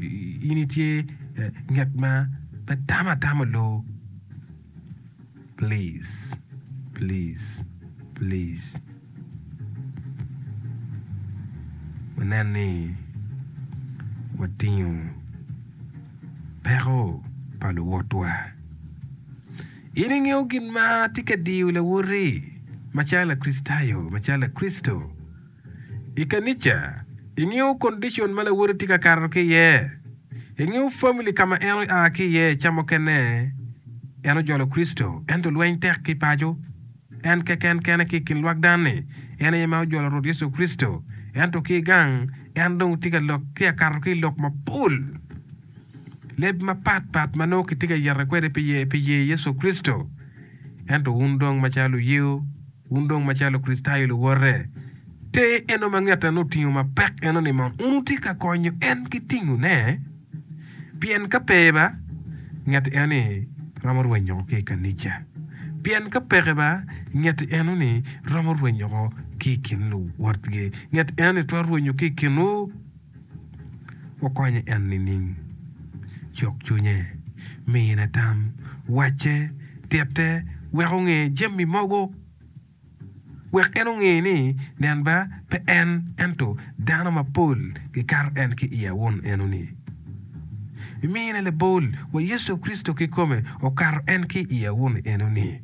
in itye ngat ma pe tamo atama loo please please please wanen ni watingo peko pa luwotwa. In ingeyo gin ma tye ka diyo lawoti macalo Lakricitayo macalo Lakricito? I kanica, ingeyo kondicon ma lawoti tye ka kato ki iye? Ingeyo famili ka ma en oa ki iye? Ca mukene en ojolo Kricito, ento lweny tek ki paco. En keken kene ki i kin lwak dan-ni en aye ma ojolo Rwot Yecu Kricito, ento ki gang en dong tye ka lok ki akato ki i lok mapol. Leb mapat pat ma nongo kitye ka yete kwede pi ye Yecu Kricito, ento wun dong macalo luyeyo, Wun dong macalo Kricitayo luwote, te eno ma ngette nongo otingo mapek eno ni man, wun wutye ka konyo en ki tingone, pien ka pe ba, ngette eno-ni romo rwenyo oko ki i kanica, pien ka peke ba, ngette eno-ni romo rwenyo oko ki i kin luwotgi, ngette eno-ni twero rwenyo ki i kinwu. Wukonye en nining? Cuk cwinye, mine tam, wacce, titte wek onge jami mogo, wek en onge ni nen ba pe en ento dano mapol gikato en ki i awun enoni. Imine labol wa Yecu Kricito kikome okato en ki i awun enoni.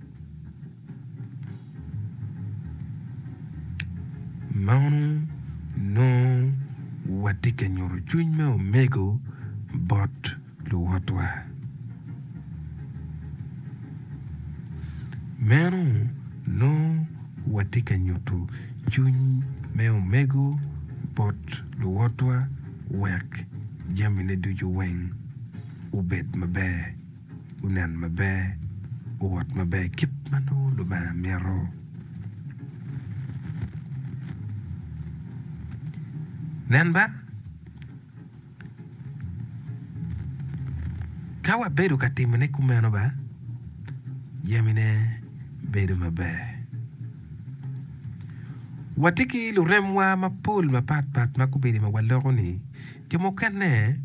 Meno nongo watye ka nyuto cwiny me omego bot luwotwa. Meno nongo watye ka nyuto cwiny me omego bot luwotwa wek jamine ducu weng obed maber. wunen maber, wuwot maber kit ma nongo Lubanga mito. Nen ba, ka wabedo ka timone kumeno ba, jamine bedo maber. Watye ki luremwa mapol mapatpat ma kobedi ma waloko-ni. Jo mukene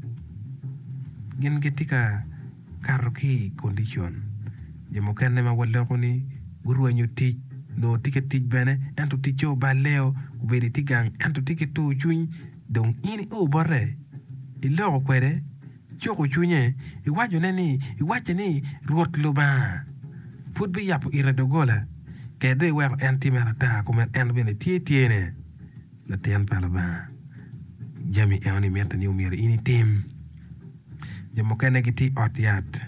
gin gitye ka kato ki i kondicon jo mukene ma waloko ni gurwenyo tic nongo tye ka tic bene ento ticce oballeo obedo itye gang ento itye ki tur cwiny dong in i o bote iloko kwede cuko cwinye iwacone ni iwacce ni Rwot Lubanga pud biyabo ite doggola kede dong iweko en timme ata kun en bene tye tyene. Latin pa Lubanga, jami enoni mitte ni omyero in itim. Jo mukene gitye i ot yat,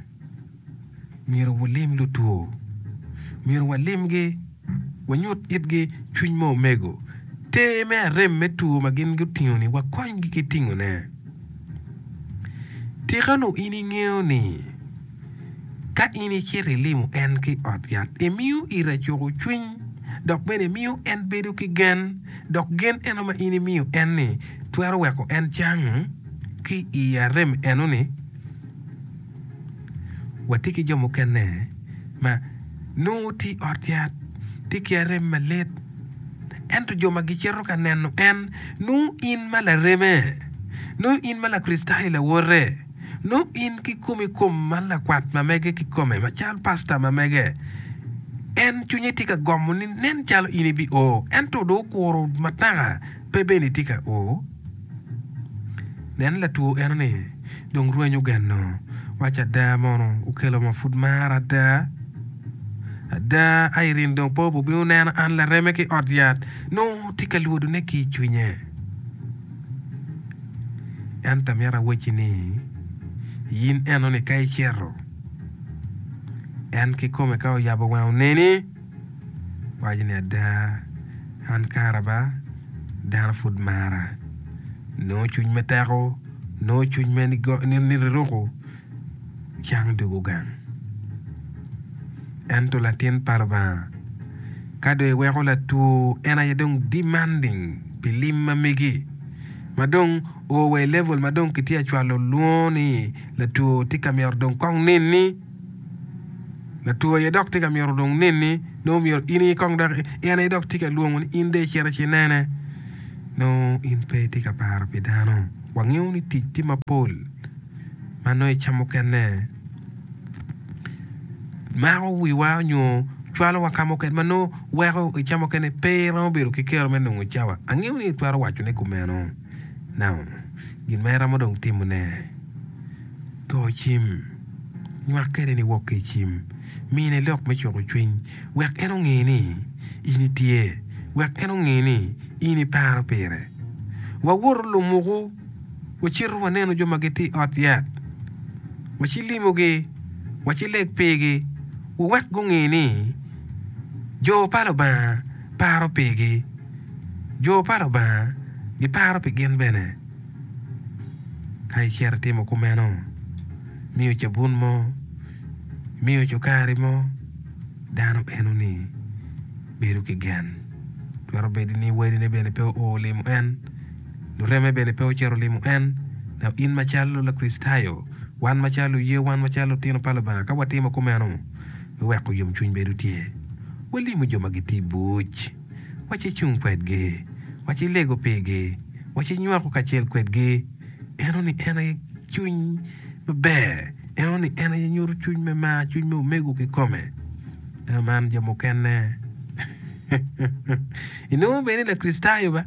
myero wulim lutwo. Myero walimgi, wanyut itgi cwiny me omego. Ter me arem me two ma gin gutingo-ni, wakonygi ki tingone. Tika onongo in ingeyo ni. Ka in icito ilimo en ki i ot yat, imiyo ira cuko cwiny dok bene imiyo en bedo ki gen. Dok gen eno ma in imiyo en-ni twero weko en cang ki i arem eno-ni. Watye ki jo mukene ma nongo gitye i ot yat, tye ki arem malit, ento jo ma gicito ka neno en nongo in ma lareme, nongo in ma Lakricitayo lawote, Nongo in kikomi kom ma lakwat ma mege kikome macalo pasta ma mege, en cwinye tye ka gomo ni nen calo in ibio, ento dong okuro mataka pe bene itye ka o. Nen latwo enoni dong rwenyo ogeno, waco ada mono okelo ma pud mara ada. Ada Irene dong pe obubino neno an lareme ki ot yat, nongo tye ka lwodone ki icwinye. Ento amito awacci ni, in enoni ka icito, en kikome ka oyabo wange oneni, waco ni, 'Ada, an kara ba dano pud mara. Nongo cwiny me teko, nongo cwiny me niruku. cang dwogo gang. Ento latin pa Lubanga, ka dong iweko latwo en aye dong demanding pi lim ma megi, ma dong o wa i level ma dong kitye ka cwalo lwongo ni latwo tye ka myero dong kong neni, latwo aye dok tye ka myero dong neni, nongo myero in aye kong dok, en aye dok tye ka lwongo ni in dong icito ci inene. Nongo in pe itye ka paro pi dano. Wangeyo ni tic tye mapol ma nongo ica mukene mako wiwa nyo cwalowa ka mukene ma nongo weko ica mukene pe iromo bedo ki kero me nongo cawa. Angeyo ni itwero wacone kumeno. Now, gin ma iromo dong timone, go cim, nywak kwede ni wok ki i cim, mine lok me cweko cwiny wek en onge ni in itye, wek en onge ni in iparo pire. Wawot olumuku. Wacito wanenu jo ma gitye i ot yat, wacilimogi, wacileg pigi, wuwek gunge ni jo pa Lubanga paro pigi. Jo pa Lubanga giparo pi gin bene. Ka icito itimo kumeno, imiyo cabun mo, imiyo cukari mo, dano enoni bedo ki gen. Twero bedo ni wadine bene pe oo limo en. Lureme bene pe ocito olimo en. Dok in macalo Lakricitayo, wan macalo luye, wan macalo lutino pa Lubanga, ka watimo kumeno, me weko yomcwiny bedo tye, walimo jo ma gitye buc, wa ci cung kwedgi, wa ci lego pigi, wa ci nywako kacel kwedgi. Eno-ni en aye cwiny maber. Eno-ni en aye nyuto cwiny me mar, cwiny me omego kikome. Ka man jo mukene inongo bene ni Lakricitayo ba?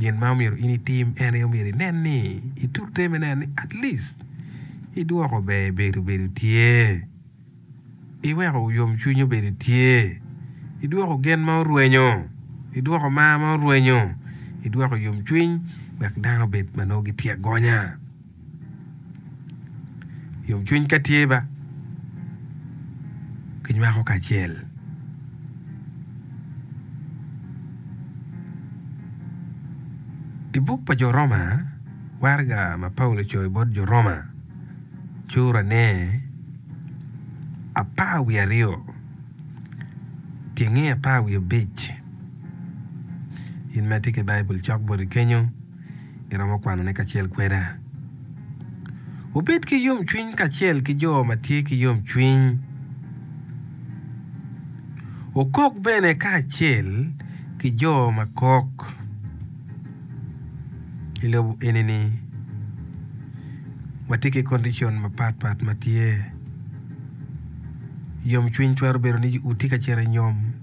Gin ma omyero in itim en aye omyero inen ni itute me neno ni at least idwoko ber bedo bedo tye iweko yomcwiny obedo tye idwoko gen ma orwenyo idwoko mar ma orwenyo idwoko yomcwiny wek dano obed ma nongo gitye agonya. Yomcwiny ka tye ba, kinywako kacel. I buk pa Jo Roma, waraga ma Paulo ocoyo bot Jo Roma curane apar wiye aryo tyenge apar wiye abic. In ma itye ki Baibul, cok boti kenyu. iromo kwanone kacel kweda. Wubed ki yomcwiny kacel ki jo ma tye ki yomcwiny. Wukok bene kacel ki jo ma kok. I lobo eni-ni, watye ki kondicon mapatpat ma tye. Yomcwiny twero bedo ni wutye ka cito i nyom.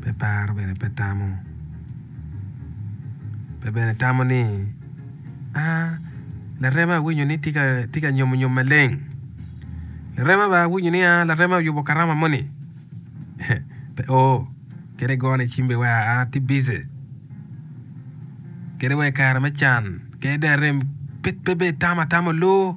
pe paro bene pe tamo pe bene tamo ni aa larema awinyo ni tye ka nyomo nyom maleng larema bene awinyo ni aa larema oyubo karama moni pe o kadi igone cim bene weko aa atye bici kadi wa i kare me can kadi dong arem pe bene itamo atama oloo.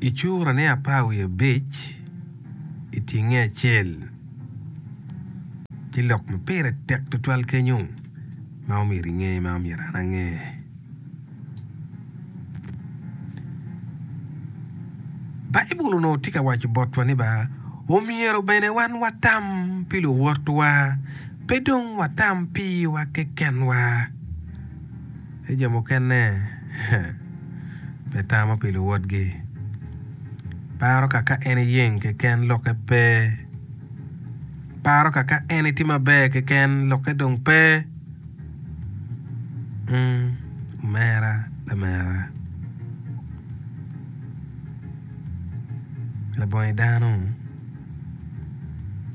I cura ne apar wiye abic i tinge acel tye lok ma pire tek tutwal kenyo ma omyero inge ma omyero an ange. Baibul onongo tye ka waco botwa ni ba omyero bene wan watam pi luwotwa pe dong watam piwa kekenwa. Ni jo mukene pe tamo pi luwotgi. Paro ka ka en iyeng keken lokke pe. Paro ka ka en itye maber keken lokke dong pe. Ung, omera, lamera. Labongi dano,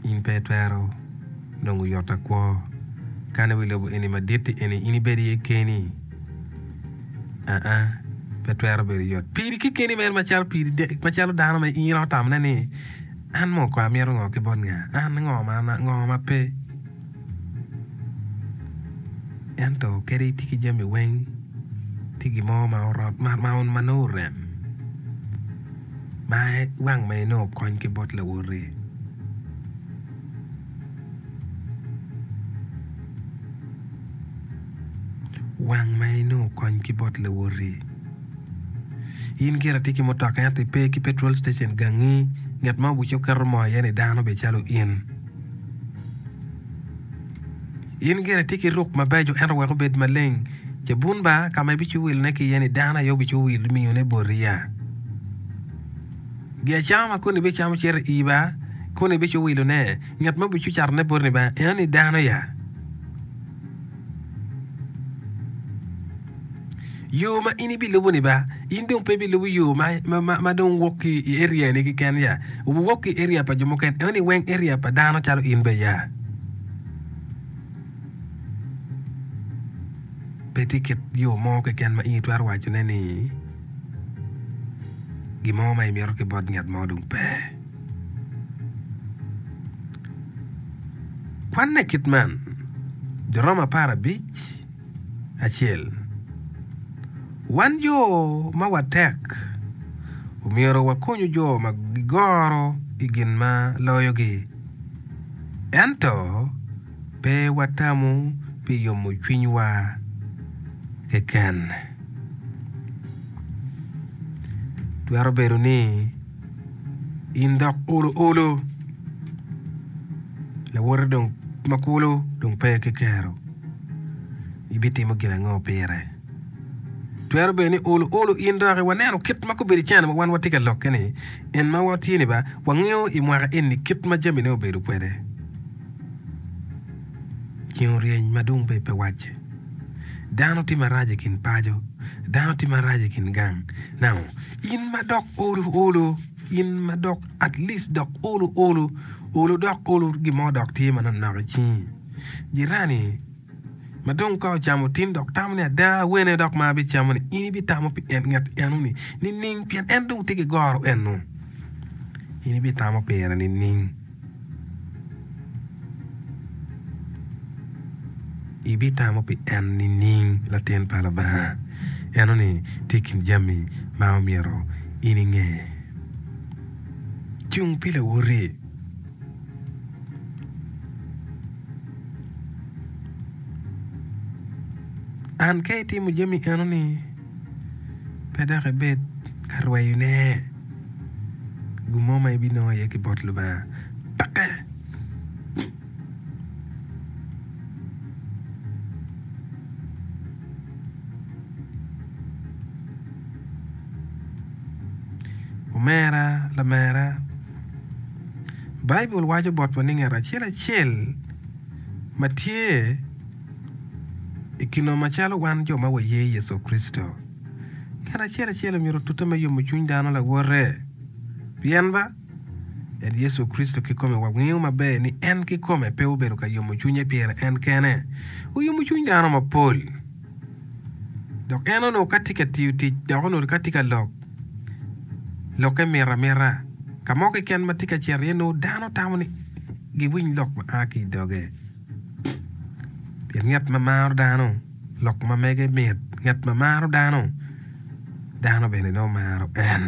in pe itwero. dong guyotta kwo. Kane wi lobo eni maditti eni in ibed iye keni? Aa, pe twero bedo yot piri kekeni mere macalo dano ma in otamone ni, 'An mo kong amito ngo ki bot nga? An ngo ma an, ngo ma pe? Ento kadi itye ki jami weng, tye gin mo ma orot ma nongo orem ma wang ma inongo kony ki bot lawoti. Wang ma inongo kony ki bot lawoti. In gire itye ki mutoka ento ipe ki petrol station gangi nget ma obucce oketo moo iye ni dano bene calo in. In gire itye ki ruk mabeco ento wek obed maleng cabun ba ka ma ibico wilone ki iye ni dano aye obico miyone boti ya. Giacama ma koni bicamo cito i iba, koni biciwilo ne, ngat mo bicu cato ne boti ni ba, enoni dano ya. Yo ma in ibilubo ni ba, in dong pe ibilubo yo ma, ma, ma, ma dong wok ki i area ni kiken ya. Wok ki area pa jo muken, enoni weng area pa dano calo in be ya. Pe tye kit yo mo keken ma in itwero waco ne ni. gin mo ma imito ki bot ngat mo dong pe. Kwanne kit man, Juroma apar abic, acel. Wan jo ma watek omyero wakonyu jo ma gigoro i gin ma loyogi. Ento. Pe watamo pi yomo cwinywa keken. Twero bedo ni in dok olo olo, lawote dong ma kulu dong pe ki kero. Ibitimo gin ango pire? Twero bedo ni olo olo in dok waneno kit ma gubedo cene ma wan watye ka lokke-ni, en ma watye ni ba wangeyo i mwaka eni kit ma jamine obedo kwede. Ceng oryeny ma dong pe wacce. Dano tye marac i kin paco, dano tye marac i kin gang. Now, in ma dok olo olo, in ma dok at least dok olo olo, olo dok olo gin mo dok tye manok nok i cingi. Jirani ma dong ka ocamo tin dok tamo ni ada wene dok ma abicamoni, in ibitamo pi en ngat eno-ni nining? Pien en dong tye ki goro eno. In ibitamo pire nining? Ibitamo pi en nining, latin pa Lubanga? Enoni tye i kin jami ma omyero in inge. Cung pi lawoti. An ka itimo jami enoni. pe dok ibed ka rweyone gin mo ma ibinongo iye ki bot Lubanga peke. Omera lamera, Baibul waco botwa ni ngat acel acel ma tye, I kino macalo wan jo ma waye Yecu Kricito, ngat acel acel omyero otute me yomo cwiny dano lawote. Pien ba en Yecu Kricito kikome wangeyo maber ni en kikome pe obedo ka yomo cwinye pire en kene, oyomo cwiny dano mapol. Dok en onongo ka tye ka tiyo tic dok onongo ka tye ka lok lokke mita mita. Ka mo keken ma tye ka cito iye nongo dano tamo ni giwiny lok ma a ki i doge. Pien ngat ma maro dano lok ma mege mit, ngat ma maro dano, dano bene nongo maro en.